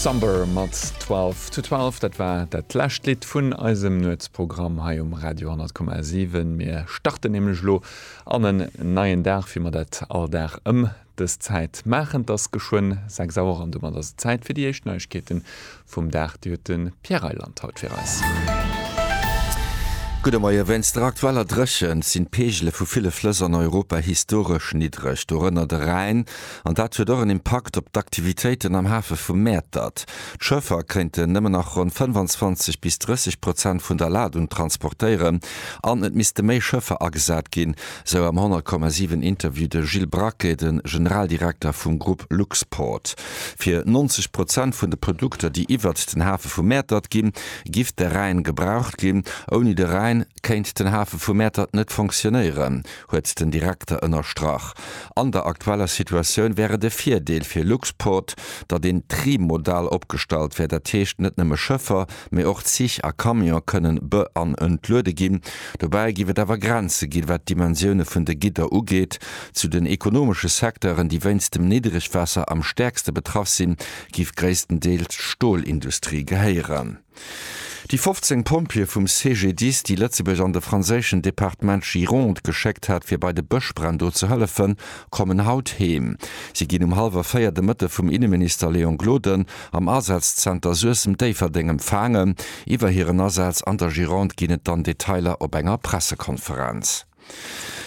Sumber mat Twelve to Twelve, dat war dat lescht Lidd vun eisem Nuetsprogramm hei um Radio 10,7. Mir starten nämlech elo an en neien Dag, wéi mer dat all Dag ëm dës Zäit maachen. Et ass geschwënn 6 Auer an domat ass et Zäit fir déi éischt Neiegkeete vum Dag, déi huet de Pierre Reyland haut fir eis. Gudde Moien. Wéinst der aktueller Dréchent sinn d'Peegele vu ville Flëss an Europa historesch niddreg, dorënner de Rhäin, an dat huet och en Impakt op d'Aktivitéiten am Hafe vu Mäertert. D'Schëffer kéinten nëmmen nach ronn 25 bis 30 Prozent vun der Ladung transportéieren an et misste méi Schëffer agesat ginn, sou am 100,7 Interview de Gilles Braquet, de Generaldirekter vum Grupp Luxport. Fir 90 Prozent vun de Produkter, déi iwwert den Hafe vu Mäertert ginn, giff de Rhäin gebraucht ginn. Ouni de Rhäin kéint den Hafe vu Mäertert net fonctionnéieren, huet den Direkter ënnerstrach. An der aktueller Situatioun wär et e Virdeel fir Luxport, datt een trimodal opgestallt wär, dat heescht net nëmme Schëffer, mee och Zich a Camion kënnen be an entluede ginn. Dobäi giff et awer Grenze ginn, wat d'Dimensioune vun de Gidder ugeet. Zu den ekonomesche Secteuren, déi wéinst dem Niddregwaasser am stäerkste betraff sinn, géif gréisstendeels d'Stolindustrie gehéieren. Déi 15 Pompjeeë vum CGDIS, déi Lëtzebuerg an de franséischen Departement Gironde geschéckt hat, fir bei de Bëschbränn do ze hëllefen, kommen haut heem. Si ginn um hallwer véier de Mëtte vum Inneminister Léon Gloden am Asazenter Suessem-Déifferdeng empfaangen. Iwwer hiren Asaz an der Gironde ginn et dann Detailer op enger Pressekonferenz.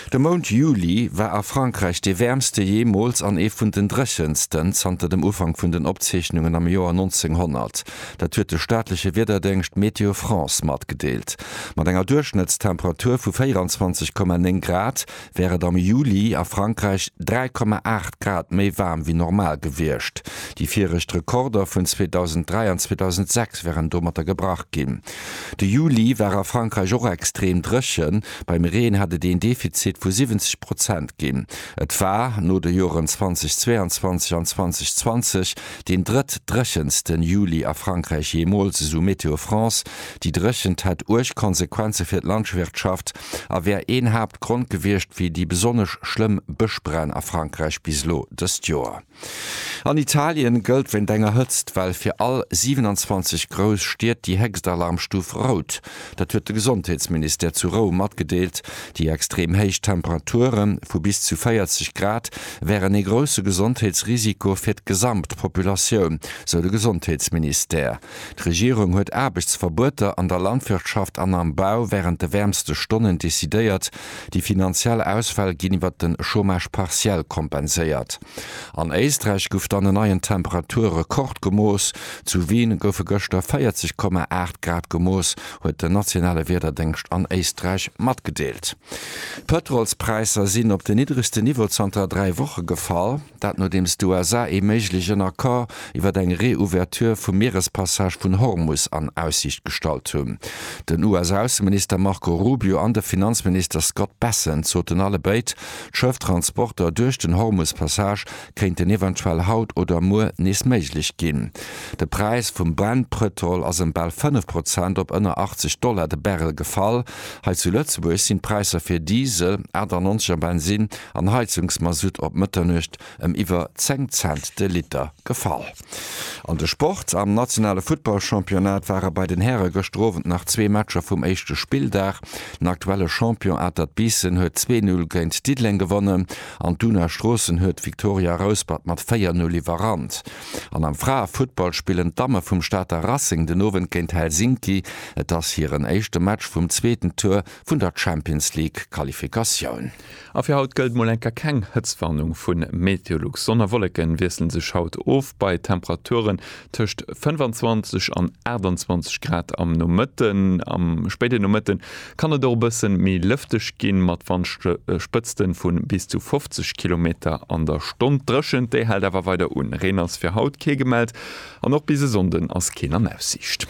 De Mount Juli war a Frankräich dee wäermste jeemools an ee vun den dréchensten zanter dem Ufank vun den Opzeechnungen am Joer 1900. Dat huet de staatleche Wiederdéngscht Météo France matgedeelt. Mat enger Duerchschnëttstemperatur vu 24,9 Grad wär et am Juli a Frankräich 3,8 Grad méi waarm wéi normal gewiescht. Déi viregt Rekorder vun 2003 an 2006 wären domatter gebrach ginn. De Juli war a Frankräich och extrem dréchen. Beim Reen hätt et een Defizit vu 70 Prozent ginn. Et war, no de Joren 2022 an 2020, deen drëtt dréchensten Juli a Frankräich jeemools, esou Météo France. Déi Dréchent hätt uerg Konsequenze fir d'Landschwirtschaft a wär een Haaptgrond gewiescht fir déi besonnesch schlëmm Bëschbränn a Frankräich bis elo dëst Joer. An Italien gëllt wéint enger Hëtztwell fir all 27 grouss Stied déi héchst Alarmstuf Rout. Dat huet de Gesondheetsministère zu Roum matgedeelt. Déi extrem héich Temperature vu bis zu 40 Grad wären ee grousse Gesondheetsrisiko fir d'gesamt Populatioun, sou de Gesondheetsministère. D'Regierung huet Aarbechtsverbueter an der Landwirtschaft an am Bau wärend de wäermste Stonnen decidéiert. Déi finanziell Ausfäll ginn iwwert de Chômage partiel kompenséiert. An Éisträich gouf dann en neien Temperaturrekord gemooss. Zu Wien goufe gëschter 40 Komma 8 Grad gemooss, huet den nationale Wiederdéngscht an Éisträich matgedeelt. D'Pëtrolspräisser sinn op den niddregsten Niveau zanter dräi Woche gefall. Dat nodeems d'USA ee méiglechen Accord iwwer eng Reouverture vum Mierespassage vun Hormus an Aussiicht gestallt hunn. Den US-Ausseminister Marco Rubio an de Finanzminister Scott Bessent soten allebéid, d'Schëfftransporter duerch den Hormus-Passage kéinten eventuell haut oder muer nees méiglech ginn. De Präis vum Brent-Pëtrol ass ëm bal 5 Prozent op ënner 80 Dollar de Barrel gefall. Hei zu Lëtzebuerg sinn d'Präisser fir Diesel, 98 a Bensinn an Heizungsmasutt op Mëtternuecht ëm iwwer 10 Cent de Liter gefall. An de Sport, Am nationale Futtballchampionnat ware bei den Häre gëschter Owend nach zwee Matcher vum éischte Spilldag. Den aktuelle Champion Atert Biissen huet 2-0 géint Diddeleng gewonnen an d'Una Stroossen huet Victoria Rouspert mat 4-0 iwwerrannt. An am Fraefuttball spillen d'Damme vum Stater Racing den Owend géint Helsinki. Et ass hiren éischte Match vum zweeten Tour vun der Champions League Qualifikatioun. A fir haut gëllt mol eng Kéier keng Hëtztwarnung vu Meteolux. Sonn a Wolleke wiessle sech haut of bei Temperaturen tëscht 25 an 28 Grad am Nomëtten. Am spéiden Nomëtte kann et och e bëssen méi lëfteg ginn, mat Wandspëtzten vun bis zu 50 Kilometer an der Stonn. D'Drëschent, déi hält awer weider un. Reen ass fir haut kee gemellt an och bis e Sonnden ass keen an Aussiicht.